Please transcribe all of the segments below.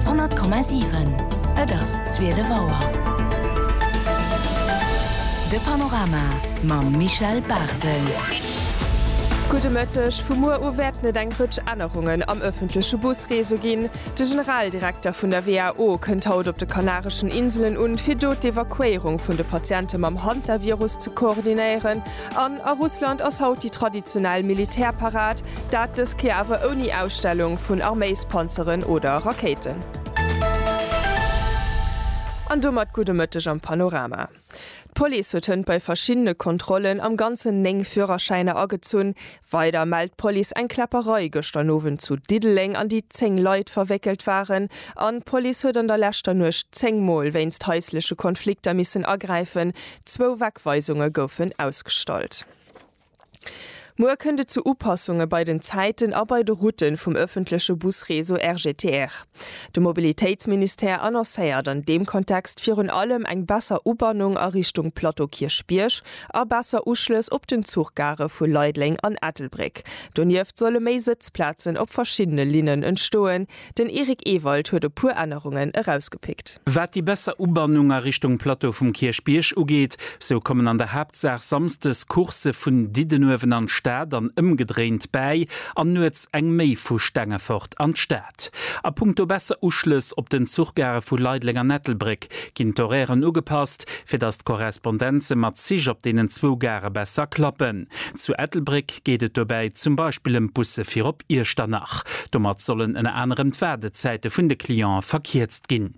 100,7 Et ass 12 Auer. De Panorama mam Michel Barthel. Gudde Mëtteg. Vu muer u wäerten et eng Rëtsch Ännerungen am ëffentleche Busreseau ginn. De Generaldirekter vun der WHO kënnt haut op de Kanareschen Inselen un, fir do d'Evakuéierung vun de Patiente mam Hantavirus ze koordinéieren. An a Russland ass haut déi traditionell Militärparad, dat dës Kéier awer ouni Ausstellung vun Arméispanzeren oder Rakéiten. An domat gudde Mëtteg am Panorama. D'Police huet hënt bei verschiddene Kontrollen am Ganzen 9 Führerschäiner agezunn, Weider mellt d'Police eng Kläpperei gëschter Nowend zu Diddeleng, an déi 10 Leit verwéckelt waren, an d'Police huet an der leschter Nuecht 10 Mol wéinst haisleche Konflikter missen agräifen. Zwou Wegweisunge goufen ausgestallt. Muer kënnt et zu Upassunge bei den Zäiten a bei de Route vum ëffentleche Busreseau RGTR. De Mobilitéitsministère annoncéiert an deem Kontext virun allem eng besser Ubannung a Richtung Plateau Kierchbierg, a besser Uschlëss op den Zuchgare vu Leideleng an Ettelbréck. Donieft solle méi Sëtzplazen op verschiddene Linnen entstoen. Den Eric Ewald huet e puer Ännerungen erausgepickt. Wat déi besser Ubannung a Richtung Plateau vum Kierchbierg ugeet, sou kommen an der Haaptsaach samsdes Coursë vun Diddenuewen an d'Stad an ëmgedréint bäi an nuets eng méi vu Stengefort an d'Stad. Konzept. A punkto besser Uschlëss op den Zuchgare vu Leideleng an Ettelbréck ginn d'Horairen ugepasst, fir datt d'Korrespondenze mat Zich op deenen zwou Gare besser klappen. Zu Ettelbréck geet et dobäi zum Beispill ëm d'Busse fir op Iechternach. Domat sollen ënner anerem d'Waardezäite vun de Clientë verkierzt ginn.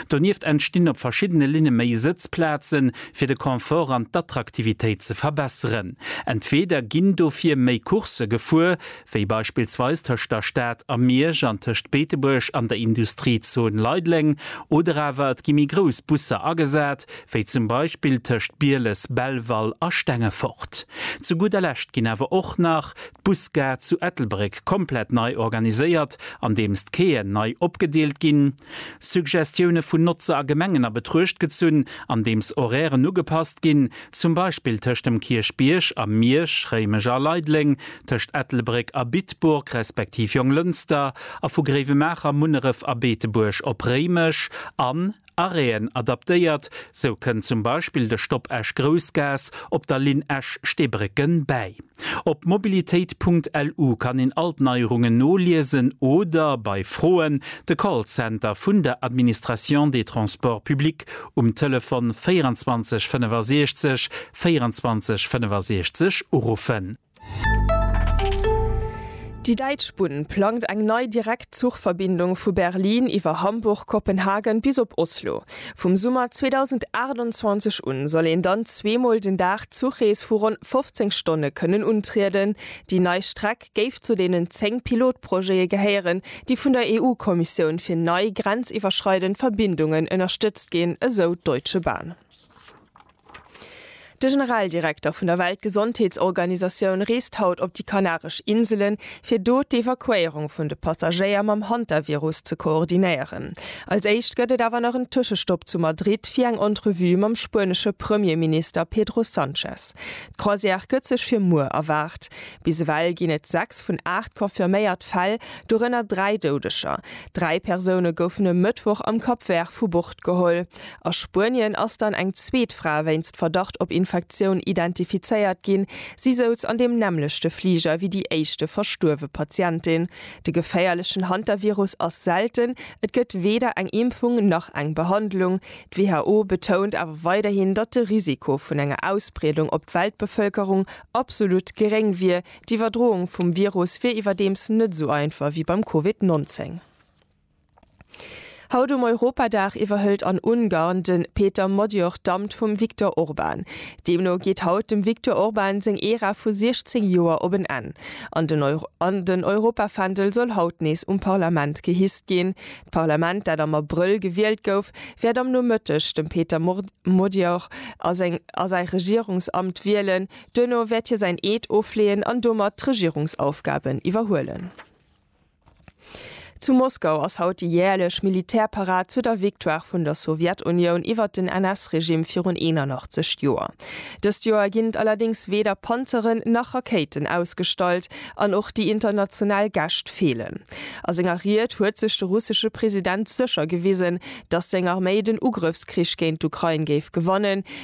Donieft entstinn op verschiddene Linne méi Sëtzplaze fir de Confort an d'Attraktivitéit ze verbesseren. Entweeder ginn dofir méi Coursë gefuer, wéi beispillsweis tëscht der Stad a Miersch an tëscht Beetebuerg an der Industriezone Leideleng, oder awer et gi méi grouss Busser agesat, wéi zum Beispill tëscht Bieles, Belval a Stengefort. Zu gudder Lescht ginn awer och nach d'Busgare zu Ettelbréck komplett nei organiséiert, andeems d'Quaien nei opgedeelt ginn, Suggestioune vun Notzer a Gemengen a Betruecht gezunn, andeems Horairen ugepasst ginn, zum Beispill tëscht dem Kierchbierg a Miersch, Réimech a Leideleng, tëscht Ettelbréck a Bitburg respektiv Jonglënster a vu Gréiwemaacher, Munneref a Beetebuerg op Réimech an Aréen adaptéiert. Sou kënnt zum Beispill de Stopp Esch-Groussgaass op der Linn Esch-Steebrécken bäi. Op mobilitéit.lu kann een all d'Neierungen noliesen oder bei Froen de Callcenter vun der Administration des Transports publics um Telefon 24 65 24 65 uruffen. Déi Däitsch Bunn plangt eng nei Direktzuchverbindung vu Berlin iwwer Hamburg-Kopenhagen bis op Oslo. Vum Summer 2028 un soll een dann zweemol den Dag d'Zuchrees vu ronn 15 Stonne kënnen untrieden. Déi nei Streck géif zu deenen 10 Pilotprojete gehéieren, déi vun der EU-Kommissioun fir nei grenziwwerschreidend Verbindungen ënnerstëtzt ginn, esou d'Deutsche Bahn. De Generaldirekter vun der Weltgesondheetsorganisatioun reest haut op déi Kanaresch Inselen, fir do d'Evakuéierung vun de Passagéier mam Hantavirus ze koordinéieren. Als éischt gëtt et awer nach en Tëschestopp zu Madrid fir eng Entrevue mam spuenesche Premierminister Pedro Sanchez. D'Croisière gëtt sech fir muer erwaart. Bis ewell ginn et 6 vun 8 confirméiert Fäll, dorënner 3 Doudeger. Dräi Persoune goufen e Mëttwoch am Cap Vert vu Bord geholl. A Spuenien ass dann eng zweet Fra wéinst Verdacht op Infektioun identifizéiert ginn. Si souz an deem nämmlechte Fliger wéi déi éischte verstuerwe Patientin. De geféierlechen Hantavirus ass selten, et gëtt weder eng Impfung nach eng Behandlung. D'WHO betount awer weiderhin, datt de Risiko vun enger Ausbreedung op d'Weltbevëlkerung absolut geréng wier. D'Iwwerdroung vum Virus wier iwwerdeems net esou einfach wéi beim Covid 19. Haut um Europadag iwwerhëlt an Ungarn de Péter Magyar d'Amt vum Viktor Orban. Deemno geet haut dem Viktor Orban seng Ära vu 16 Joer op en Enn. An den an den Europafändel soll haut nees um Parlament gehisst ginn. D'Parlament, dat am Abrëll gewielt gouf, wäert am Nomëtteg dem Péter Magyar a seng a säi Regierungsamt wielen. Duerno wäert hie säin Eed ofleeën an domat d'Regierungsaufgaben iwwerhuelen. Zu Moskau ass haut déi jäerlech Militärparad zu der Victoire vun der Sowjetunioun iwwert den NS-Regime virun 81 Joer. Dëst Joer ginn et allerdéngs weder Panzeren nach Rakéiten ausgestallt an och déi international Gäscht feelen. A senger Ried huet sech de russesche President sécher gewisen, datt seng Arméi den Ugrëffskrich géint d'Ukrain géif gewannen,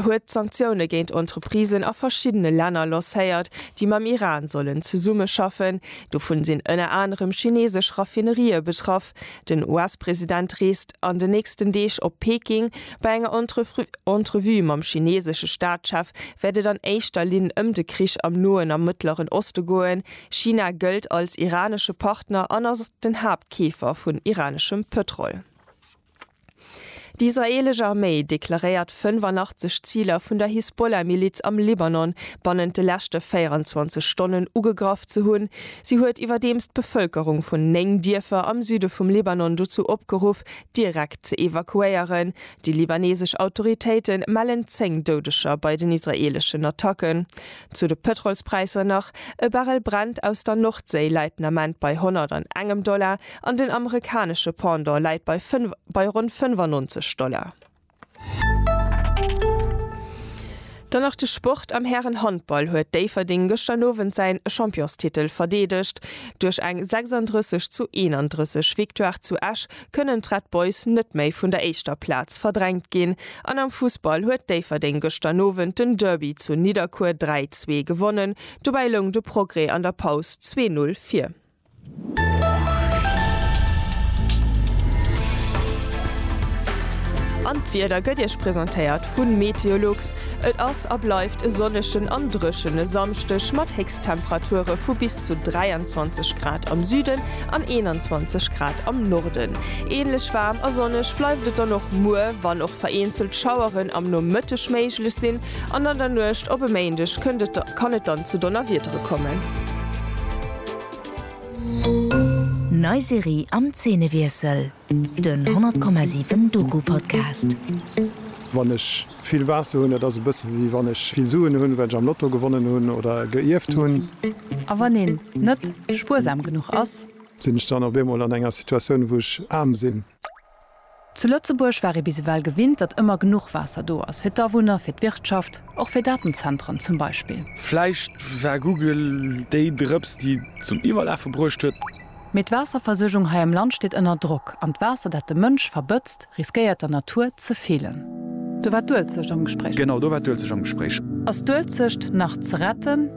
huet Sanktioune géint Entreprisen a verschiddene Länner lancéiert, déi mam Iran sollen zesummeschaffen. Dovun sinn ënner anerem chineesesch Raffinerië betraff. Den US-President reest an den nächsten Deeg op Peking. Bei enger Entrevue mam chineesesche Staatschef wäert et an éischter Linn ëm de Krich am Noen a Mëttleren Oste goen. China gëllt als iranesche Partner an ass den Haaptkeefer vun iraneschem Pëtrol. Déi israeelesch Arméi deklaréiert 85 Ziler vun der Hisbollah-Miliz am Libanon bannent de leschte 24 Stonnen ugegraff ze hunn. Si huet iwwerdeems d'Bevëlkerung vun 9 Dierfer am Süde vum Libanon dozou opgeruff, direkt ze evakuéieren. Déi libanesesch Autoritéite mellen 10 Doudeger bei den israeeleschen Attacken. Zu de Pëtrolspräisser nach, E Barrel Brent aus der Nordséi läit den Ament bei 100 an engem Dollar. An den amerikanesche Pendant läit bei bei ronn 95 Dollar. Dann nach de Sport, Am Hären-Handball huet Déifferdeng gëschter Owend säin Championstitel verdeedegt. Duerch eng 36 zu 31 Victoire zu Esch kënnen d'Red Boys net méi vun der éischter Plaz verdrängt ginn. An am Fussball huet Déifferdeng gëschter Owend den Derby zu Nidderkuer 3, 2 gewonnen. Dobäi loung de Progrès an der Paus zwee Null vir. An d'Wieder gëtt Iech presentéiert vun Meteolux. Et ass a bleift e sonnegen an dréchene Samschdeg mat Héchsttemperature vu bis zu 23 Grad am Süden an 21 Grad am Norden. Ähnlech waarm a sonneg bleift et dann och muer, wann och vereenzelt Schaueren am Nomëtteg méiglech sinn. An an der Nuecht op e Méindeg kënnt et kann et dann zu Donnerwiedere kommen. Nei Serie am Zeenewiessel, den 100,7 Doku-Podcast. Wann ech vill Waasser hunn, dat ass e bësse wéi wann ech vill Suen hunn, well ech am Lotto gewonnen hunn oder geierft hunn. A wann een net spuersam genuch ass? Sinn ech dann op eemol an enger Situatioun, wou ech aarm sinn? Zu Lëtzebuerg war ee bis ewell gewinnt, datt ëmmer genuch Waasser do ass, fir d'Awunner, fir d'Wirtschaft, och fir Datenzentren zum Beispill. Vläicht war Google déi Drëps, déi et zum Iwwerlafe bruecht huet. Mee d'Waasserversuergung hei am Land steet ënner Drock, an d'Waasser, dat de Mënsch verbëtzt, riskéiert der Natur ze feelen. Do war d'Uelzecht am Gespréich. Genau, do war d'Uelzecht am Gespréich. Ass d'Uelzecht nach ze retten?